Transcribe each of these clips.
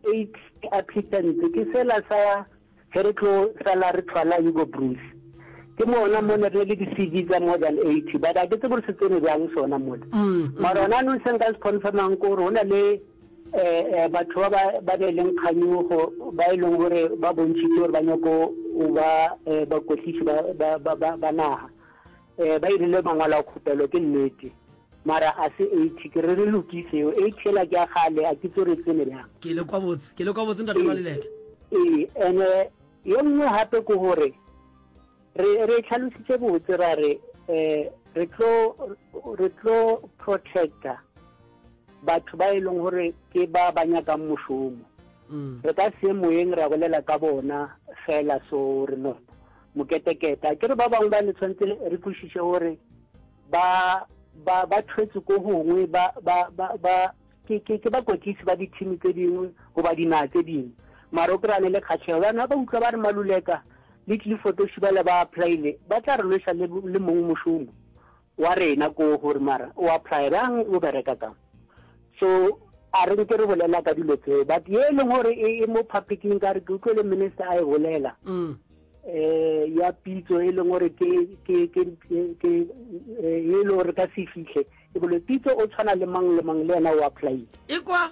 Eighth ke applicant ke sela sa ge re tlo sala re thwala Hugo Broos. Ke mona mo ne re na le di-CV tsa more than eighty but ga ke tsebe gore se tsene bjang sona mona. Mara gona jaanong se nka se confirm-ang ke gore go na le um batho ba ba na leng kganyogo ba e leng gore ba bontšhitše gore ba nyako go ba um bakwetliši ba naga. Eh, ba irile mangwalo a khupelo, ke nnete. Mara a se eighty, ke re re lokise yo. Eighty yela ke ya kgale, a ke tso re tsene bjang. Ke le kwa botse, ke le kwa botse ntate Maluleke. Ee, ene yo nngwe gape ke gore re re tlhalositse botse ra re eh re tlo re tlo protecta batho ba e leng gore ke ba ba nyakang mošomo mm. re ka se moyeng ra bolela ka bona fela so re no moketekete a kere ba bangwe ba ne tshwanetse re kwešiše gore ba ba ba thwetse ko gongwe ba ba ba ba ke ke ke bakwetlisi ba dithimi tse dingwe goba dinaga tse dingwe mara o kry-a ne le kgatlhego bana ba utlwa ba re maluleka le tlile fotoshi ba le ba applyile ba tla re lwesa le mongwe mošomo wa rena ko gore mara o apply bjang o bereka ka so a re nke re bolela ka dilo tseo but ye e leng gore e, e mo publicing ka re ke utlwe le minister a e bolela mm. eh ya pitso e leng gore ke ke ke ke eh, e le gore ka se fitlhe e bole pitso o tshwana le mang le mang le yena o apply e kwa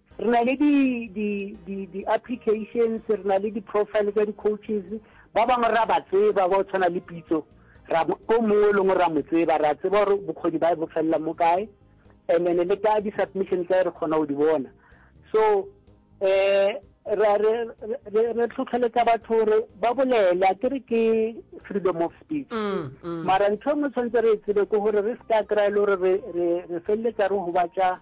Re na le di, di, di, di applications, re na le di-profile tsa di-coaches, ba bangwe ra ba tseba ba o tshwana le pitso, ra o mongwe o lengwe ra mo tseba, ra tseba gore bokgoni ba bo felela mo kae, and then le ka di-submission tsa re kgona go di bona. So eh re re re tlhotlheletsa batho gore ba bolele a kere ke freedom of speech mm, mm. mara ntho e nngwe tshwanetse re e tsebe ke gore re se ka kry-e le gore re feleletsa re gobatša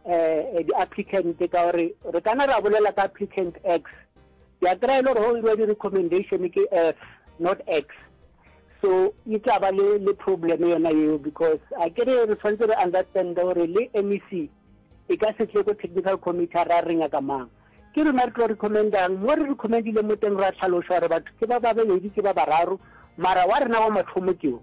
eh, di-applicant ka gore re kana ra bolela ka applicant x ke a kry-e le gore go iriwa di-recommendation ke f not x so e tla ba le le problem yona eo because a ke re re tshwanetse re understand gore le mec e ka se tle ko technical committee a ra re nyaka mang ke rona re tlo recommendang mo re recommendile mo teng ra tlhaloša gore batho ke ba babedi ke ba bararo mara wa rena wa mathomo keo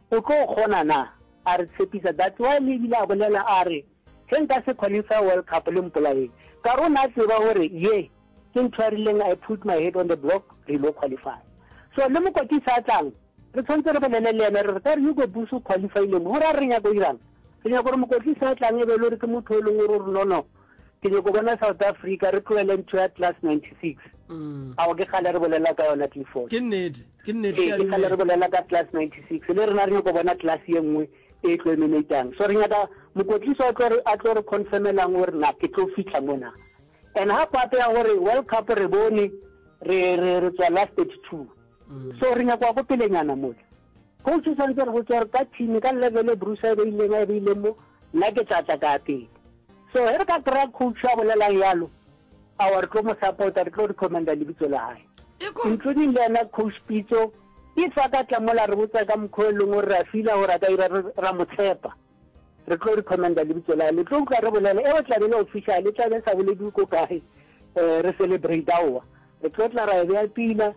O tlo kgona na? A re tshepisa, that's why le ebile a bolela a re, Ge nka se qualify World Cup le mpolaeng, ka re o ne a tseba gore ye ke ntho a rileng I put my head on the block re ilo qualifya. So le mokotisa a tlang, re tshwantse re bolele le yena re re ka re Hugo Broos o qualifyile mo, go raya re nyaka go dirang? Re nyaka gore mokotisa a tlang e be e le gore ke motho o e leng gore o re no no, ke nyoko bona south africa re tloele ntho ya class 96 mm. ao ke kgale re bolela ka yona clifford ke nnete ke nnete ee, ke kgale re bolela ka class 96 le rena re nyoko bona class ye nngwe e tlo emenatang so re nyaka mokotliso a tlo re confirmelang gore na ke tlo fitlha mona and ha pape ya gore world cup re bone re tswa last 32 mm. so re nyakwa ko pelenyana mole Coach o santse re botsa gore ka team ka level e Bruce a e beileng a e beileng mo nna ke tla tla ka pele. So he re ka kry-a coach a bolelang yalo awa re tlo mo support re tlo recommenda lebitso la hae. Including le yena coach Pitso if a ka tla mola re botsa ka mokgwa e leng gore ra fila gore a ka ira ra mo tshepa re tlo recommenda lebitso la le tlo utlwa re bolela e o tla be le official e tla be sa bolediwe ko kae eh re celebrate aowa re tlo tla ra e beya pila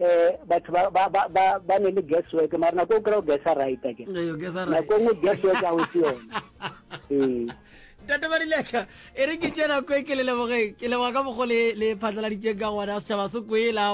eh batho ba ba ba ba ba ne le guess work mara nako o kry-o guessa right ake nako ngwe guess work a o se yone ee ntate barileka e re ke tsena ko ke le lebogeng ke leboga ka bogo le phatlaladitseng ka gona setšhaba se kwela